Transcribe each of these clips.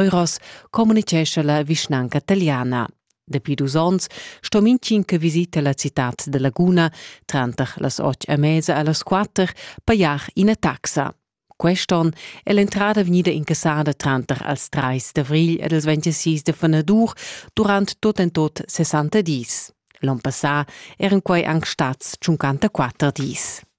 Euros communicescha la vischnanca taliana. Dapi dus onns sto mintgin che visita la citad de Laguna tranter las otg e mesa e las quatter pajar ina taxa. Quest'on è l'entrada vegnida incassada tranter als 3 d'avril ed als 26 de Fenadur durant tot en tot 60 dis. L'on passà eran quai anc stats 54 dis.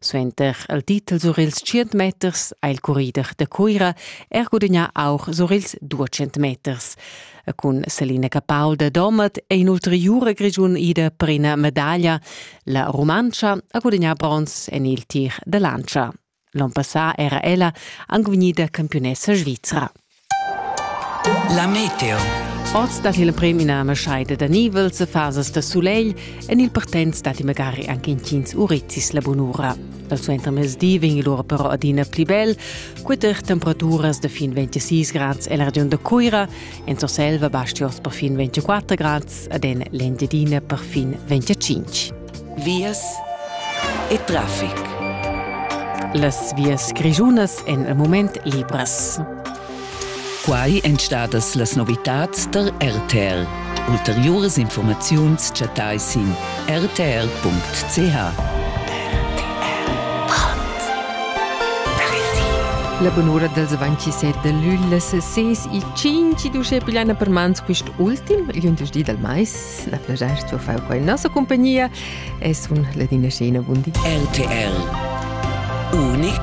Suenter il titel sur ils 100 meters ha il currider da Cuira er gudagnà aur sur ils 200 meters. Cun Selina Capaul da Domat è in'ulteriura grigiun ida per ina medaglia. La Rumantscha ha gudagnà bronz en il tir da lantscha. L'onn passà era ella anc vegnida campiunessa svizra. La meteo. Oz dat il premina maschaida da nivels e fasas da sulegl en il partenz datti magari anche intgins urizis la bunura. Dal suentermezdi vegn lura però adina pli bel, queter temperaturas da fin 26 grads e la regiun da Cuira, en Surselva baschi oz per fin 24 grads, ad en l'Engiadina per fin 25. vias e traffic. Las vias grischunas en il moment libras. Quai èn stadas las novitads tar RTR. Ulteriuras informaziuns chattai sin rtr.ch. La bunura dals 27 da lügl las 6 e 5 d'uschè pigliana per mans quist ultim, il di dal mais. La plaschair d'ho fau qua in nossa compagnia e sun Ladina Scena Bundi. RTL Unic